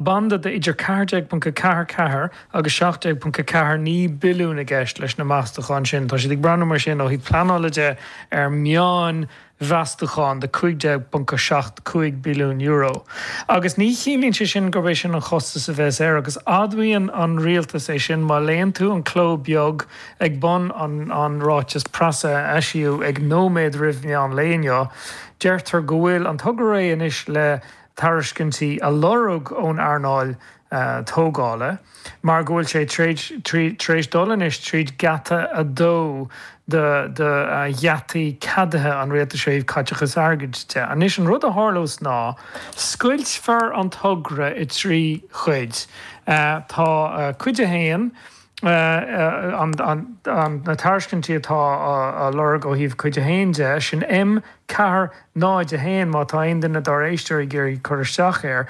Banda de idir 14.44 agus 17.49 billiún i gceist leis na meastacháin sin. Tá siad ag breathnú mar sin, ó thaobh pleanála de, ar meán mheastachán de €15.75 billiún. Agus ní chiallaíonn sé sin gurb é sin an chostas a bheas air, agus admhaíonn an rialtas é sin má léann tú an cló beag ag bun an ráitis preasa a eisíodh ag nóiméad roimh mheán lae inniu. Deirtear go bhfuil an togra réidh anois le. tairiscintí a lorg ón earnáil tógála mar go bhfuil sé tar éis dul anois tríd geata a dó de gheataí ceadaithe an Rialtais ó thaobh caiteachais airgid de. Anois, an rud a tharlós ná scoiltfear an togra i dtrí chuid. Tá Cuid a hAon, na tairiscintí atá á lorg ó thaobh Cuid 1 de, sin M, Ceathair, Náid, a hAon, má tá aon duine dár éisteoirí ag iarraidh cur isteach air.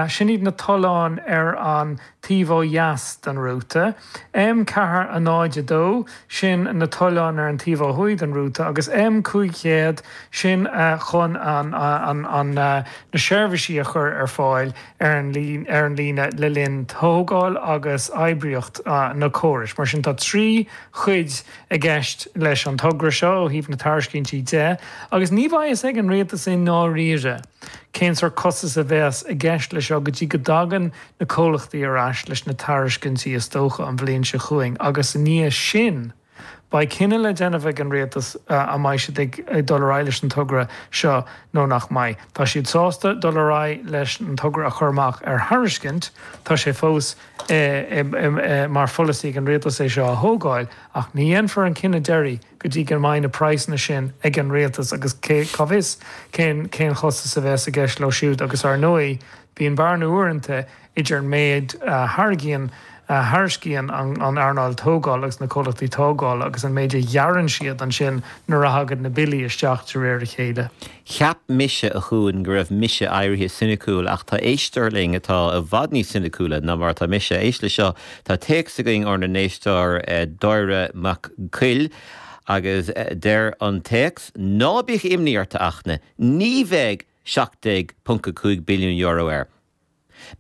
Sin iad na tolláin ar an taobh ó dheas den rúta. M, Ceathair, A Náid, A Dó, sin na tolláin ar an taobh ó thuaidh den rúta, agus M, Cúig Chéad, sin chun na seirbhísí a chur ar fáil. ar an líne le linn tógáil agus oibríocht na córais. Mar sin, tá trí chuid i gceist leis an togra seo ó thaobh na tairiscintí de agus ní bheidh a fhios ag an rialtas i ndáiríre cén sórt costas a bheas i gceist leis seo go dtí go dtagann na comhlachtaí ar ais leis na tairiscintí, is dócha an bhliain seo chugainn agus ina dhiaidh sin. Beidh cinneadh le déanamh ag an Rialtas an mbeidh siad ag dul ar aghaidh leis an togra seo nó nach mbeidh. Tá siad sásta dul ar aghaidh leis an togra a chur amach ar thairiscint, tá sé fós mar pholasaí ag an Rialtas é seo a thógáil, ach ní dhéanfar an cinneadh deiridh go dtí go mbeidh na praghsanna sin ag an Rialtas agus cá bhfios cén chostas a bheas i gceist leo siúd agus, ar ndóigh, bíonn bearna uaireanta. idir an méid a thairgíonn, a thairiscíonn an earnáil tógála agus na comhlachtaí tógála agus an méid a ghearrann siad ansin nuair a thagann na billí isteach de réir a chéile. Cheap mise, a Chuain, go raibh mise éirithe soiniciúil, ach tá éisteoir linn atá i bhfad níos soiniciúla ná mar atá mise. Éist leis seo, tá téacs againn ónár n-éisteoir Dáire Mac Coille agus deir an téacs, Ná bíodh imní ort, a Fhachtna, ní bheidh €17.5 billiún air.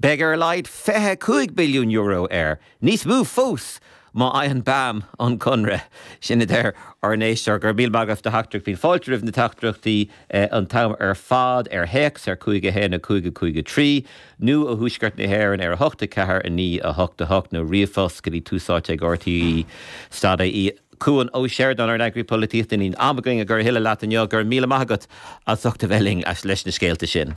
Beidh ar a laghad €25 billiún air, níos mó fós má fhaigheann BAM an conradh. Sin a deir ár n-éisteoir. Go raibh míle maith agat as do theachtaireacht. Bíonn fáilte roimh na teachtaireachtaí an t-am ar fad, ar théacs ar 51 553 nó ó Thuaisceart na hÉireann ar 8 4 0 9 8 8 nó ríomhphost go dtí túsáite ag RTÉ stad IE. Cuan Ó Seireadáin, ár n-eagarthóir polaitíochta. Níl am againn a chur a thuilleadh leat inniu. Go raibh míle maith agat as ucht a bheith linn leis na scéalta sin.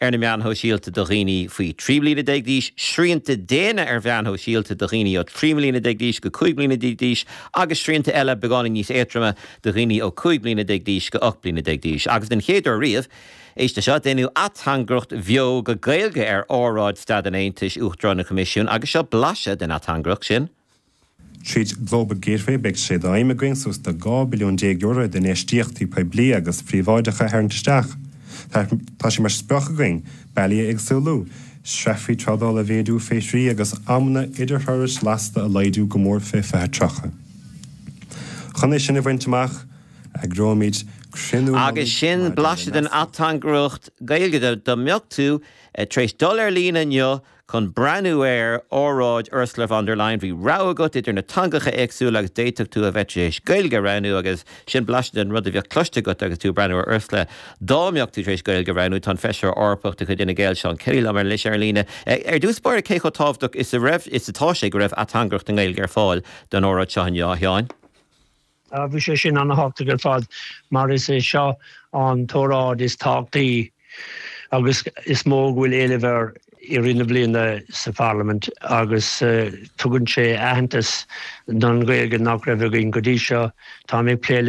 ar na meáin shóisialta do dhaoine faoi 13 bliana d'aois, srianta diana ar mheáin shóisialta do dhaoine ó 13 mbliana d'aois go 15 bliana d'aois agus srianta eile beagáinín níos éadroime do dhaoine ó 15 bliana d'aois go 18 bliana d'aois. Agus den chéad uair riamh, éist le seo, déanadh ateangaireacht bheo go Gaeilge ar óráid Staid an Aontais Uachtarán an Choimisiúin agus seo blaiseadh den ateangaireacht sin. Tríd Global Gateway beidh sé d'aidhm againn suas do €12 billiún d'infheistíochtaí poiblí agus príobháideacha a tharraingt isteach. Tá, tá sé mar sprioc againn bealaí a éagsúlú, sreafaí trádála a mhéadú fé thrí agus amanna idirthurais lasta a laghdú go mór fé 2030. Chun é sin a bhaint amach, eagróimid cruinniú mullaigh maidir le nascadh. Agus sin blaiseadh den ateangaireacht Gaeilge dá mbeadh tú tar éis dul ar líne inniu Chun breathnú ar óráid Ursula von der Leyen, bhí rogha agat idir na teangacha éagsúla agus d'fhéadfadh tú a bheith tar éis Gaeilge a roghnú agus sin blaiseadh den rud a bheadh cloiste agat agus tú ag breathnú ar Ursula. Dá mbeadh tú tar éis Gaeilge a roghnú, tá an Feisire Eorpach de chuid Fhine Gael Seán Kelly liom anois ar líne, ar dtús báire cé chomh tábhachtach is a raibh is atá sé go raibh ateangaireacht i nGaeilge ar fáil don óráid seo inniu, a Sheáin? Bhí sé sin an-thábhachtach ar fad mar is é seo an t-óráid is tábhachtaí agus is mó go bhfuil éileamh air i rith na bliana sa Pharlaimint agus tugann sé aitheantas don Ghaeilge nach raibh againn go dtí seo. Táim ag plé leis